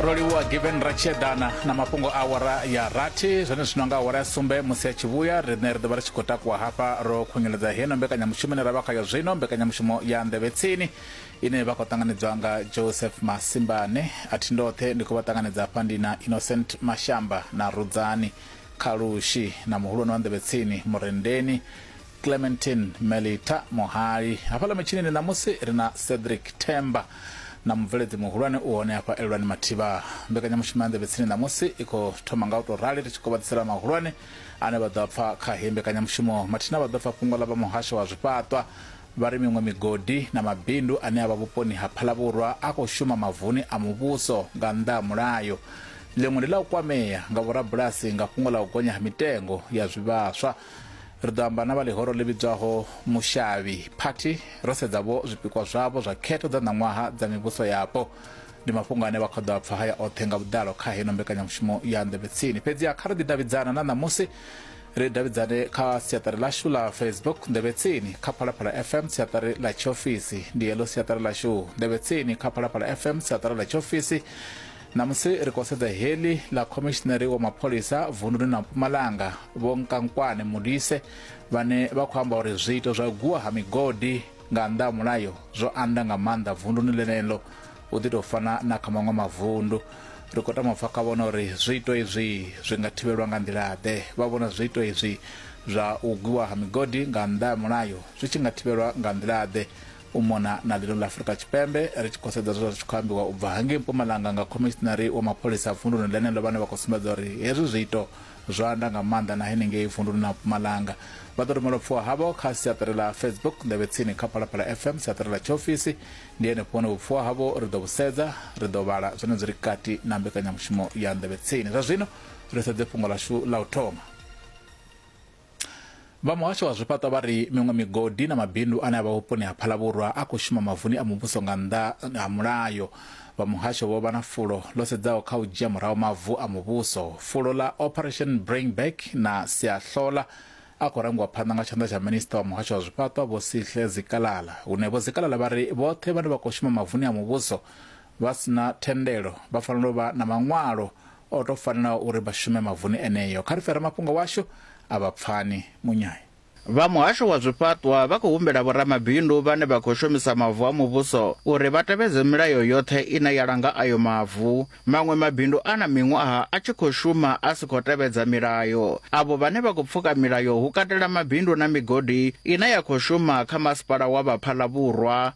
roliwa given ratshedana na mafhungo a awara ya rathi zwone zwino nga awara ya sumbe musi a tshi vhuya riṋe ri ḓovha ri tshi khou takuwa hafha ro khunyeledza heno mbekanyamushumo ine ra vha khayo zwino mbekanyamushumo ya nḓevhe tsini ine vha khou ṱanganedzwa nga joseph masimbane a thi ndoṱhe ndi khou vha ṱanganedza hafha ndi na innocent mashamba na rudzani khalushi na muhulwane wa nḓevhe tsini murendeni Clementin Melita Mohali. Hafhaḽa mitshinini ṋamusi ri na Cedric Themba na mubveledzi muhulwane u hone hafha Elwani Mathiba. Mbekanyamushumo ya Nḓevhe Tsini ṋamusi i khou thoma nga u tou rali ri tshi kovhadzisela mahulwane ane vha ḓo a pfa kha heyi mbekanyamushumo. Mathina vha ḓo pfa fhungo ḽa vha muhasho wa zwifhaṱwa vha ri miṅwe migodi na mabindu ane a vha vhuponi ha Phalavhurwa a khou shuma mavuni a muvhuso nga nnḓa ha mulayo. Ḽiṅwe ndi ḽa u kwamea nga vhorabulasi nga fhungo ḽa u gonya ha mitengo ya zwivhaswa. Ri ḓo amba na vha ḽihoro ḽi vhidzwaho Mushavhi Party ro sedza vho zwipikwa zwavho zwa khetho dza ṋaṅwaha dza mivhuso yapo. Ndi mafhungo ane vha khou ḓo a pfa haya oṱhe nga vhuḓalo kha heno mbekanyamushumo ya Nḓevhe Tsini. Fhedziha kha ri ḓi davhidzana na ṋamusi ri davhidzane kha siaṱari ḽashu ḽa Facebook Nḓevhe Tsini kha Phalaphala FM siaṱari ḽa tshiofisi. Ndi heḽo siaṱari ḽashu Nḓevhe Tsini kha Phalaphala FM siaṱari ḽa tshiofisi. Ṋamusi ri khou sedza heḽi ḽa khomishinari wa mapholisa vunduni na Mpumalanga Vho Nkankwane Modise vhane vha khou amba uri zwiito zwa u gwiwa ha migodi nga nnḓa ha mulayo zwo anda nga maanḓa vunduni ḽeneḽo u ḓi tou fana na kha maṅwe mavundu. Ri khou tama u pfa kha vhona uri zwiito izwi zwi nga thivhelwa nga nḓila-ḓe. Vha vhona zwiito izwi zwa u gwiwa ha migodi nga nnḓa ha mulayo zwi tshi nga thivhelwa nga nḓila-ḓe. u mona na ḽino ḽa Afurika Tshipembe ri tshi khou sedza zwe zwa ri tshi khou ambiwa u bva hangei Mpumalanga nga khomishinari wa mapholisa a vunduni ḽeneḽo vhane vha khou sumbedza uri hezwi zwiito zwo anda nga maanḓa na henengei vunduni ḽa Mpumalanga. Vha ḓo rumela upfiwa havho kha siaṱari ḽa Facebook Nḓevhe Tsini kha Phalaphala FM siaṱari ḽa tshiofisi. Ndi henefho hune vhupfiwa havho ri ḓo vhusedza, ri ḓo vhala zwine zwi ri kati na mbekanyamushumo ya Nḓevhe Tsini. Zwa zwino ri sedze fhungo ḽashu ḽa u thoma. Vha muhasho wa zwifhaṱo vha ri miṅwe migodi na mabindu ane a vha vhuponi ha Phalavhurwa a khou shuma mavuni a muvhuso nga nnḓa ha mulayo. Vha muhasho vho vha na fulo ḽo sedzaho kha u dzhia murahu mavu a muvhuso. Fulo ḽa Operation Bring Back na Siahlola a khou rangiwa phanḓa nga tshanḓa tsha minisiṱa wa muhasho wa zwifhaṱo Vho Sihle Zikalala, hune Vho Zikalala vha ri vhoṱhe vhane vha khou shuma mavuni a muvhuso vha si na thendelo vha fanela u vha na maṅwalo O tou fanela uri vha shume mavuni eneo. Kha ri fhe ramafhungo washu a vha pfani. Munyai. Vha muhasho wa zwifhaṱwa vha khou humbela vhoramabindu vhane vha khou shomisa mavu a muvhuso uri vha tevhedze milayo yoṱhe ine ya langa ayo mavu. Maṅwe mabindu a na miṅwaha a tshi khou shuma a si khou tevhedza milayo. Avho vhane vha khou pfuka milayo hu katela mabindu na migodi ine ya khou shuma kha masipala wa Baphalabvhurwa,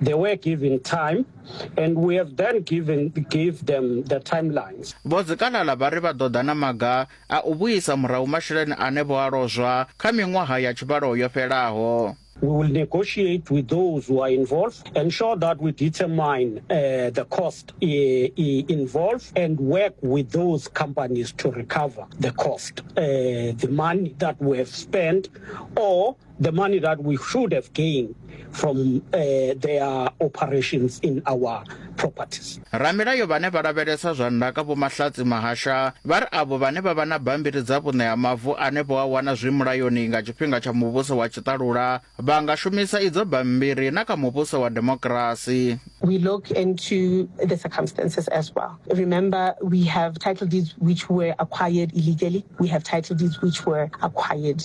They were given time, and we have then given gave them the timelines. vho dzikalala vha ri vha ḓo ḓa na maga a u vhuisa murahu masheleni ane vho a lozwa kha miṅwaha ya tshivhalo yo fhelaho We will negotiate with those who are involved, ensure that we determine uh, the cost uh, uh, involved, and work with those companies to recover the cost, uh, the money that we have spent, or the money that we should have gained from uh, their operations in our properties. Ramilayo vhane vha lavhelesa zwa ndaka vho Mahlatsi Mahasha vha ri avho vhane vha vha na bambiri dza vhuṋe ha mavu ane vho a wana zwi mulayoni nga tshifhinga tsha muvhuso wa tshiṱalula vha nga shumisa idzo bambiri na kha muvhuso wa demokirasi. We look into the circumstances as well. Remember we have title deeds which were acquired illegally. We have title deeds which were acquired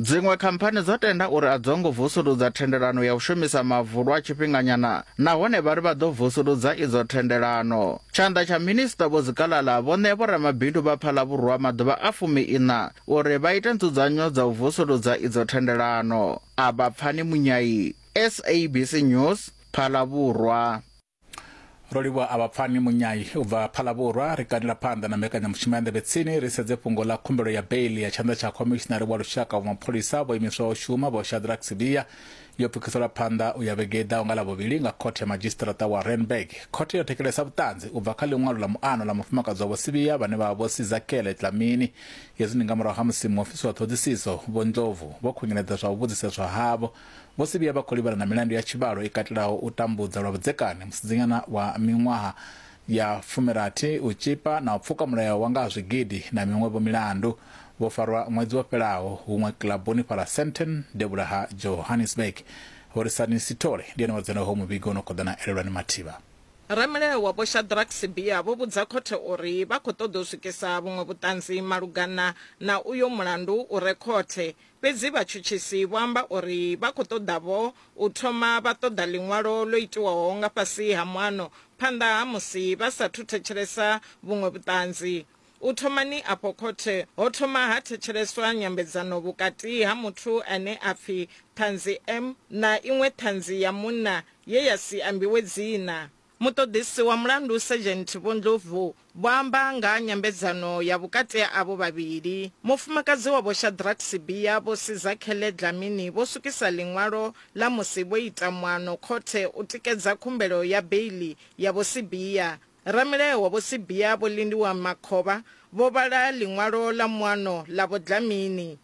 Dziṅwe khamphani dzo tenda uri a dzo ngo vusuludza thendelano ya u shumisa mavu lwa tshifhinganyana nahone vha ri vha ḓo vusuludza idzo thendelano. Tshanḓa tsha Minisṱa Vho Zikalala vho ṋea vhoramabindu vha Phalavhurwa maḓuvha a fumi-iṋa uri vha ite nzudzanyo dza u vusuludza idzo thendelano. A vha Pfani Munyai, SABC News, Phalavhurwa. ro livhuwa a vha pfani munyai u bva phalavhurwa ri kanila phanḓa na mbekanyamushumo ya nḓevhe tsini ri sedze fhungo ḽa khumbelo ya beili ya tshanḓa tsha khomishinari wa lushaka wa mapholisa vho imiswa u shuma vho shadrack sibiya yo pfukisela phanḓa u ya vhege i ḓaho nga ḽa vhuvhili nga khothe ya madzhisiṱiraṱa wa renberg khothe yo thekelesa vhuṱanzi u bva kha ḽiṅwalo ḽa muano ḽa mufumakadzi wa vho sibiya vhane vha vha vho sizakele tlamini hezwi ndi nga murahu ha musi muofisi wa ṱhoḓisiso vho ndlovu vho khunyeledza zwa u vhudziseswa havho Vho Sibiya vha khou livhana na milandu ya tshivhalo i katelaho u tambudza lwa vhudzekani musidzanyana wa miṅwaha ya fumirathi, u tzhipa na u pfuka mulayo wa nga ha zwigidi na miṅwe-vho milandu. Vho farwa ṅwedzi wo fhelaho huṅwe kiḽabuni fhaḽa Sandton, devhula ha Johannesburg. Horisani Sithole ndi ene wa dzhena ho muvhigo no khou ḓa na Elelwani Mathiba. Ramilayo wa Vho Shadrack Sibiya vho vhudza khothe uri vha khou ṱoḓa u swikisa vhuṅwe vhuṱanzi malugana na uyo mulandu u re khothe Fhedzi vhatshutshisi vho amba uri vha khou ṱoḓa-vho u thoma vha ṱoḓa ḽiṅwalo ḽo itiwaho nga fhasi ha muano phanḓa ha musi vha sa athu thetshelesa vhuṅwe vhuṱanzi. U thomani afho khothe ho thoma ha thetsheleswa nyambedzano vhukati ha muthu ane a pfi Ṱhanzi M na iṅwe Ṱhanzi ya munna ye ya si ambiwe dzina. Muṱoḓisi wa mulandu Sergeant Vho Ndlovu vho amba nga ha nyambedzano ya vhukati ha avho vhavhili. Mufumakadzi wa Vho Shadrack Sibiya, Vho Sizakhele Dlamini vho swikisa ḽiṅwalo ḽa musi vho ita muano khothe u tikedza khumbelo ya beiḽi ya Vho Sibiya. Ramilayo wa Vho Sibiya Vho Lindiwe Makhovha vho vhala ḽiṅwalo ḽa muano ḽa Vho Dlamini.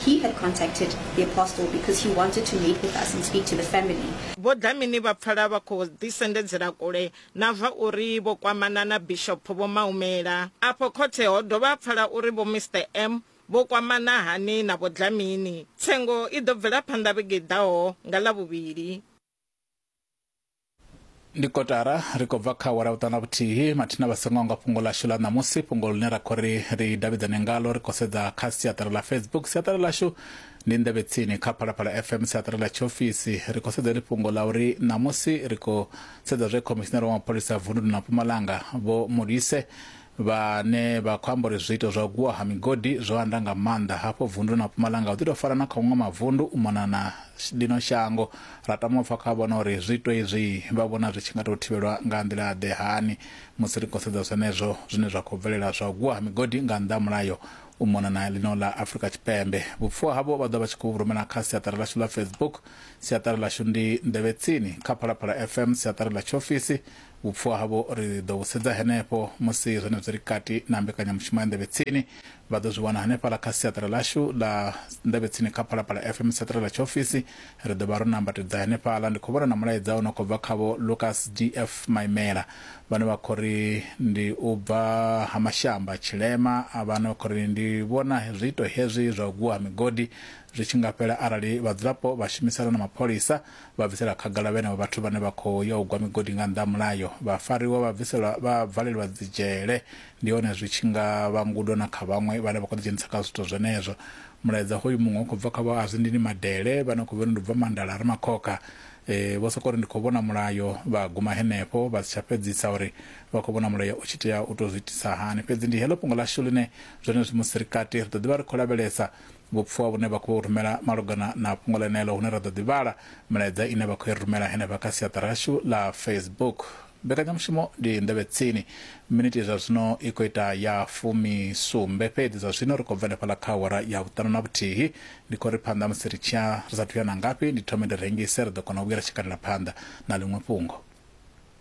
He had contacted the Apostle because he wanted to meet with us and speak to the family. Vho Dlamini vha pfala vha khou ḓisendedzela kule na zwa uri vho kwamana na Bishop Vho Maumela. Afho khothe ho dovha ha pfala uri Vho Mister M vho kwamana hani na Vho Dlamini. Tsengo i ḓo bvela phanḓa vhege i ḓaho nga Ḽavhuvhili. ndi kotara ri khou bva kha awara vhuṱanu na vhuthihi mathina vha songo nga fhungo ḽashu ḽa ṋamusi fhungo ḽine ra khou ri ri davhidzane ngalo ri khou sedza kha siaṱari ḽa facebook siaṱari ḽashu ndi nḓevhe tsini kha phalaphala fm siaṱari ḽa tshiofisi ri khou sedza ḽi fhungo ḽa uri ṋamusi ri khou sedza zwe khomishinari wa mapholisa vundu na mpumalanga vho mulise vhane vha khou amba uri zwiito zwa u gwiwa ha migodi zwo anda nga maanḓa hafho vunduni ḽa Mpumalanga hu ḓi tou fana na kha maṅwe mavundu u mona na ḽino shango. Ra tama u pfa kha vhone uri zwiito izwi vha vhona zwi tshi nga tou thivhelwa nga nḓila-ḓe, hani, musi ri khou sedza zwenezwo zwine zwa khou bvelela zwa u gwiwa ha migodi nga nnḓa ha mulayo u mona na ḽino ḽa Afrika Tshipembe. Vhupfiwa havho vha ḓo vha vha tshi khou vhu rumela kha siaṱari ḽashu ḽa Facebook. Siaṱari ḽashu ndi Nḓevhetsini kha Phalaphala FM, siaṱari ḽa tshiofisi Vhupfhiwa havho ri ḓo vhu sedza henefho musi zwenezwo ri kati na mbekanyamushumo ya Nḓevhe Tsini. Vha ḓo zwi wana hanefhaḽa kha siaṱari ḽashu ḽa Nḓevhe Tsini kha Phalaphala FM, siaṱari ḽa tshiofisi. Ri ḓo vha ro nambatedza henefhaḽa. Ndi khou vhona na mulaedza u no khou bva kha Vho Lucas DF. Maimela vhane vha khou ri ndi u bva Ha Mashamba, Tshilema, vha no khou ri ndi vhona zwiito hezwi zwa u gwiwa ha migodi zwi tshi nga fhela arali vhadzulapo vha shumisana na mapholisa vha bvisela khagala vhenevho vhathu vhane vha khou ya u gwa migodi nga nnḓa ha mulayo, vha fariwa vha bviselwa vha valelwa dzidzhele. Ndi hone zwi tshi nga vha ngudo na kha vhaṅwe vhane vha khou ḓidzhenisa kha zwithu zwenezwo. Mulaedza hoyu muṅwe u khou bva kha vho Azwindini Madele vhane khou vhori ndi u bva Mandala re makhokha. Vho sokou ri ndi khou vhona mulayo vha guma henefho vha si tsha fhedzisa uri vha khou vhona mulayo u tshi tea u tou zwi itisa hani. Fhedzi ndi heḽo fhungo ḽashu ḽine zwenezwi musi ri kati ri ḓo ḓi vha ri khou lavhelesa vhupfwa vhune vha khou rumela malugana na fhungo ḽeneḽo hune ra ḓo ḓi vhala milaedza ine vha khou i rumela henefha kha siaṱari ḽashu ḽa Facebook. Mbekanyamushumo ndi nḓevhe tsini. Minithi zwa zwino i khou ita ya fumi sumbe fhedzi zwa zwino ri khou bva henefhaḽa kha awara ya vhuṱanu na vhuthihi. Ndi khou ri phanḓa musi ri tshiya ri sathu ya na ngafhi ndi thome ndi rengise ri ḓo kona u vhuya ri tshi katela phanḓa na ḽiṅwe fhungo.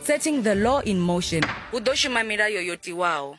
Setting the law in motion, hu ḓo shuma milayo yo tiwaho.